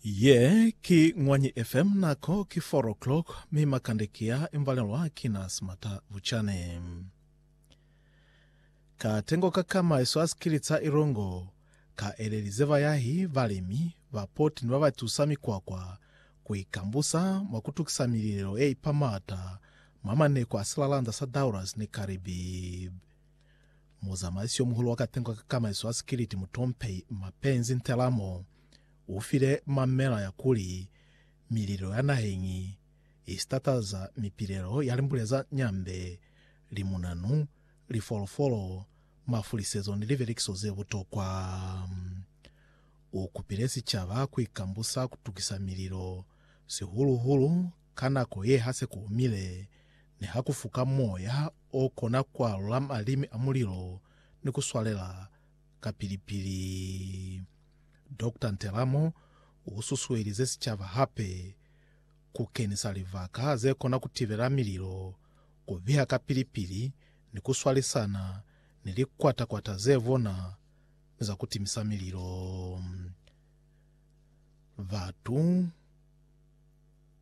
Ye ki Ñwanyi FM, nako ki 4 o'clock, mi makande ki a imbalelwa ki na Smata Vuchane. Katengo ka kama iso a sikili ca Ilongo ka elelize bayahi, balimi, bapoti ni ba ba tusa mikwakwa ku ikambusa mwa ku tukisa mililelo ye ipa maata mwa maneko a silalanda sa Dauras ni Caribbean. Muzamaisi yo muhulu wa katengo ka kamaiso ya sikiliti mutompehi Mapenzi Ntelamo u file mamela ya kuli mililo ya naheñi i sitataza mipilelo ya limbule za nyambe, limunanu, lifolofolo, mafulisezo ni liberekiso ze butokwa. U kupile sicaba ku ikambusa ku tukisa mililo, sihulu-hulu Ka nako ye ha se ku omile, ne ha ku fuka moya o kona ku alula malimi a mulilo ni ku swalela kapili-pili. Doctor Ntelamo u susuelize sicaba hape ku kenisa libaka ze kona ku tibela mililo, ku biha kapili-pili ni ku swalisana ni likwata-kwata ze bona ni za ku timisa mililo. Batu.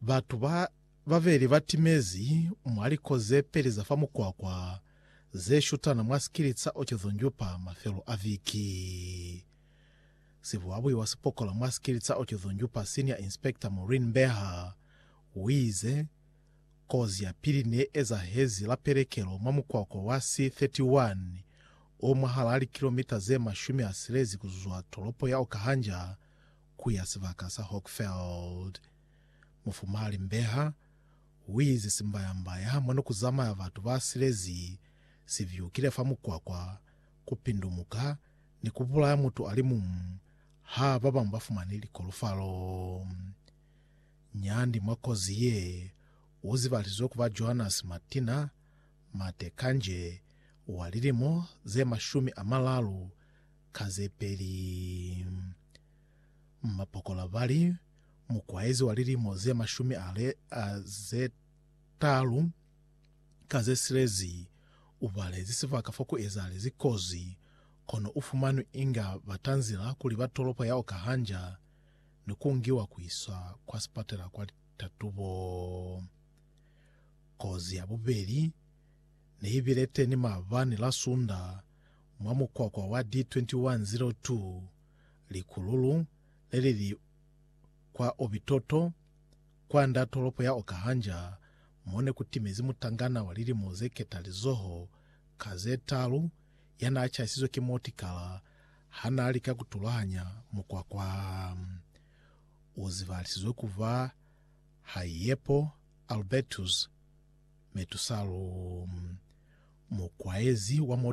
Batu ba babeli ba timezi mwa liko ze peli za fa mukwakwa ze shutana mwa sikilitsa Okezo Njupa mafelo a viki. Sibuabui wa sipokola mwa sikilitsa Okezo Njupa Senior Inspector Maureen Mbeha uize, Kozi ya pili ne ezahezi la pelekelo mwa mukwakwa wa C31 o mwahalaa likilomita ze mashumi a silezi kuzwa tolopo ya Okahanja ku ya sibaka sa Hochfeld. Mufumali Mbeha uize simbayambaya mwa nikuzamaya batu ba silezi sivyukile fa mukwakwa, kupindumuka ni kubulaya mutu alimumu ha babañwi bafumani likolofalo. Nyandi mwa kozi ye uzibalizwe kuba Johannes Matina Mate Kanje wa lilimo zemashumi amalalu Ka ze peli, mapokola ba li, Mukwaezi wa lilimo ze mashumi a le a ze talu ka ze silezi u balezi sibaka fa ku ezahalezi kozi, kono u fumanwi inga ba tanzila kuli ba tolopo ya Okahanja ni ku ngiwa ku iswa kwa sipatela kwa litatubo. Kozi ya bubeli ne i bile teni maabani la Sunda mwa mukwakwa wa D2102, likululu lelili kwa Obitoto, kwanda tolopo ya Okahanja, mone kutimezi mutangana wa lilimo zeketalizoho ka zetaalu yanaachasizwe ki motikala hanaalika kutulahanya mukwakwa. Uzibalisizwe kuba Haiepo Albertus Metusalu, mukwaezi wa motikala.